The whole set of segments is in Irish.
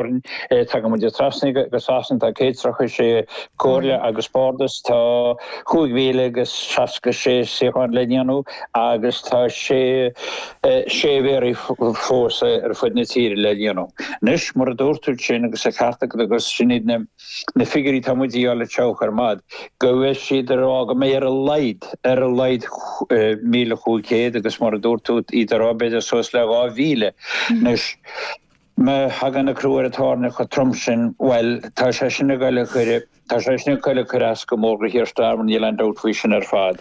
Tagann muid trasna go Sasana, tá 136 comhairle agus bardas, tá 5,066 suíochán le líonadh agus tá 6 mhéaraí fós ar fud na tíre le líonadh. Anois, mar a dúirt tú sin agus an ceart agat agus sin iad na figiúirí atá muid a fháil le teocht ar fad, go bhfuil siad ag rá go mbeidh ar a laghad, ar a laghad 1,500 agus mar a dúirt tú, iad ag rá b'fhéidir suas le 2,000. Anois. Má thagann an crú ar an tairne chomh trom sin, bhuel, tá sé sin ag dul a chuir, tá sé sin ag dul a chuir as go mór go Keir Starmer, níl aon dabht faoi sin ar fad.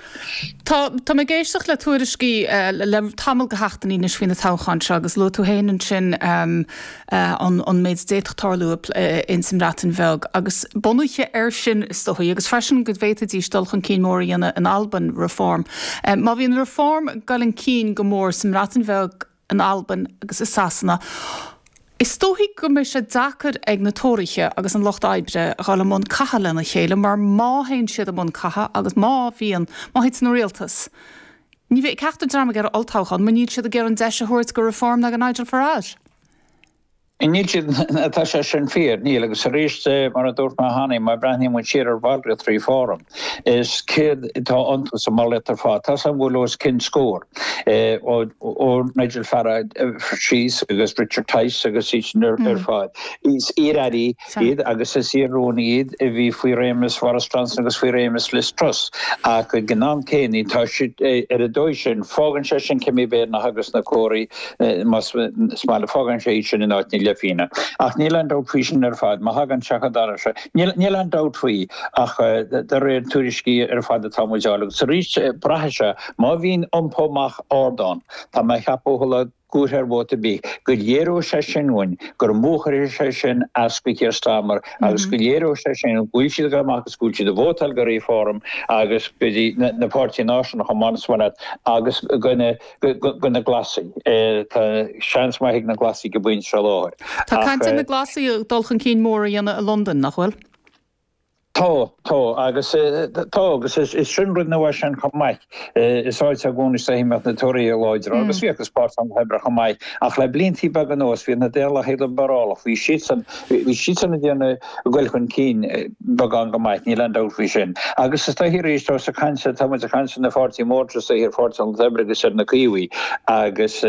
Tá, tá mé ag éisteacht le tuairiscí le tamall go sheachtainí anois faoi na toghcháin seo agus luaigh tú féin ansin an, an méid a d'fhéadfadh tarlú ins an mBreatain Bheag agus bunaithe air sin is dóichí, agus freisin go bhféadfaidís dul chun cinn mór a dhéanamh in Albain, Reform. Má bhíonn Reform ag dul chun cinn go mór sa mBreatain Bheag, in Albain agus i Sasana. Is dóichí go mbeidh sé deacair ag na Tóraithe agus an Lucht Oibre a ghabhail i mbun catha lena chéile mar má théann siad i mbun catha agus má bhíonn, má thiteann an rialtas, ní bheidh ceachtar dream ag iarraidh olltoghchán mar níl siad ag iarraidh an deis a thabhairt go Reform ná go Nigel Farage. Níl siad, á tá sé sin fíor, níl, agus arís, mar a dúirt mé cheana, má bhreathnaíonn muid siar ar bhallraíocht Reform, is céard atá iontu más maith leat ar fad? Tá a fhios againn go bhfuil os cionn scór, ó Nigel Farage síos, agus Richard Tice agus iad sin ar fad, is iar-airí, iad, agus is iar-rúnaithe iad, a bhí faoi réimeas Bhoris Johnson agus faoi réimeas Liz Truss, ach ag an am céanna, tá siad, ar an dóigh sin, fágann sé sin Kemi Badenoch agus na Tóraithe, más maith leat, fágann sé iad sin in áit na leithphínne. Ach níl aon dabht faoi sin ar fad, má thagann sé chun dara sé, níl, níl aon dabht faoi, ach de réir tuairiscí ar fad atá muid a fháil, agus arís, braithfidh sé, má bhíonn iompú amach ard ann, tá mé a cheapadh, a thuilleadh, gcurtha ar mhodh ar bith, go léireodh sé sin dúinn gur mó a chuirfeadh sé sin as go Keir Starmer agus go léireodh sé sin go bhfuil siad ag dul amach agus go bhfuil siad ag vótáil go Reform agus go dtí na páirtithe náisiúnacha, más maith leat, agus go na Glasaigh. Tá seans maith ag na Glasaigh ag an bpointe seo i láthair. Tá caint ar na Glasaigh dul chun cinn mór a dhéanamh i Londain, nach bhfuil? Tá. Tá. Agus tá. Agus is sin rud nua sin chomh maith. Is áit i gcónaí is dóichí a mbíodh na Tóraithe láidir agus bhíodh agus Páirtí an Lucht Oibre chomh maith. Ach le bliantaí beaga anuas bhí na Daonlathaigh Liobrálacha, bhí siadsan, bhí siadsan ag déanamh dul chun cinn beagán go maith, níl aon dabht faoi sin. Agus is dóichí arís, tá tusa ag caint, tá muid ag caint ar an dá pháirtí mór is dóichí, ar Pháirtí an Lucht Oibre agus ar na Caomhaigh agus,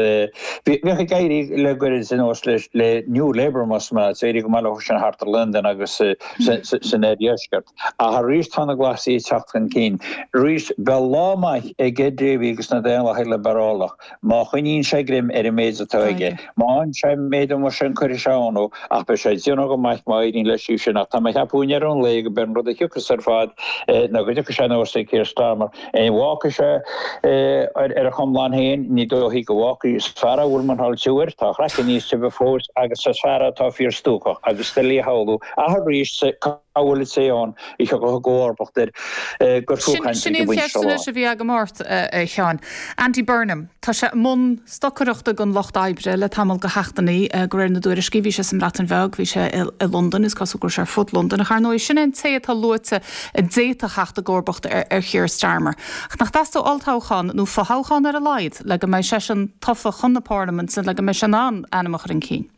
Bhíodh ag éirí le goirid sa nós le New Labour más maith leat, éirí go maith leo sin thart ar Londain agus san oirdheisceart. Ach arís tá na Glasaigh ag teacht chun cinn. Arís, beidh lá maith ag Ed Davey agus na Daonlathaigh Liobarálach má choinníonn sé greim ar an méid atá aige. Má fhanann sé an méid amuigh sin cuirfidh sé ionadh, ach beidh sé ag déanamh go maith má éiríonn leis sin. Ach tá mé ag ceapadh i ndeireadh an lae gurb é an rud a thiocfas ar fad ná go dtiocfaidh sé anuas ag Keir Starmer. An bhfágfaidh sé ar a chonlán féin? Ní dóichí go bhfágfaidh. Is fear a bhfuil muineál tiubh air, tá a chraiceann níos tibhe fós agus is fear atá fíor stuacach agus is doiligh a shamhlú ach arís cá bhfuil an té ann a thiocfadh i gcomharbacht air gur fiú caint air ag an bpointe seo i láthair. Sin é an cheist anois a bhí agam ort, a Sheáin. Andy Burnham. Tá sé i mbun stocaireachta don Lucht Oibre le tamall de sheachtainí, de réir na dtuairiscí. Bhí sé sa mBreatain Bheag, bhí sé i Londain, is cosúil go raibh sé ar fud Londain. Ach, ar ndóigh, sin é an té atá luaite a d'fhéadfadh theacht i gcomharbacht ar Keir Starmer. Ach nach dteastódh olltoghchán, nó fothoghchán ar a laghad, le go mbeidh seisean tofa chun na Parlaiminte, le go mbeidh sé in ann a ainm a chur chun cinn?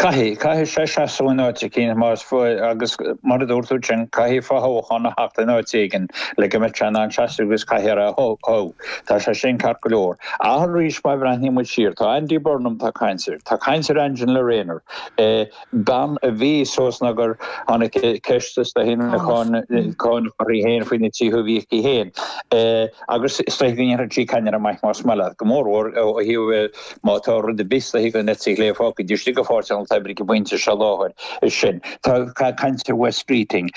Caithfidh, caithfidh sé seasamh in áit eicínt más maith leat agus mar a dúirt tú ansin, caithfidh fothoghchán a theacht in áit éigin le go mbeidh sé in ann seasamh agus caithfidh a rá OK, tá sé sin ceart go leor. Ach arís má bhreathnaíonn muid siar, tá Andy Burnham, tá caint air, tá caint ar Angela Rayner, bean a bhí suas nó gur tháinig ceist is dóichí na cánach uirthi féin faoi na tithe a bhí aici féin agus is dóichí go ndéanfadh sí ceannaire maith más maith leat, go mórmhór ó thaobh Má tá rud ar bith is dóichí den eite chlé fágtha taobh istigh de Pháirtí an Lucht Oibre ag an bpointe seo i láthair, í sin. Tá caint ar Wes Streeting.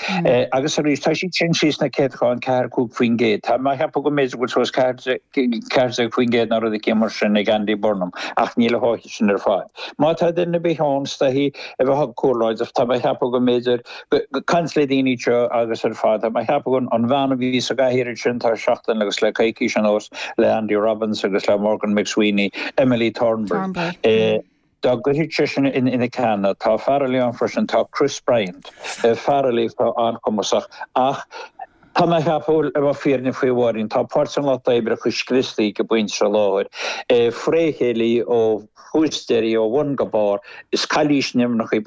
Agus arís, tá siad sin thíos sna céatadáin, ceathair, cúig faoin gcéad. Tá mé a cheapadh go mb'fhéidir go bhfuil suas ceathair déag faoin gcéad nó rud eicínt mar sin ag Andy Burnham, ach níl a sháith sin ar fad. Má tá duine ar bith ann is dóichí a bheadh chomh láidir. Tá mé a cheapadh go mb'fhéidir. Caint le daoine seo agus ar fad. Tá mé ag ceapadh an bhean a bhí sa gcathaoir ansin tá seachtain agus le coicís anuas le Andy Robbins agus le Morgan McSweeney, Emily Thornberry. Dá gcuirfeadh sí sin ina ceann é. Tá fear eile ann freisin, tá Chris Bryant. Fear eile atá an-chumasach ach tá mé ag ceapadh, le bheith fírinneach faoi, a Mháirín, tá Páirtí an Lucht Oibre chomh scriosta ag an bpointe seo i láthair, fré chéile ó thús deireadh, ó bhun go barr. Is cailís nimhneach í.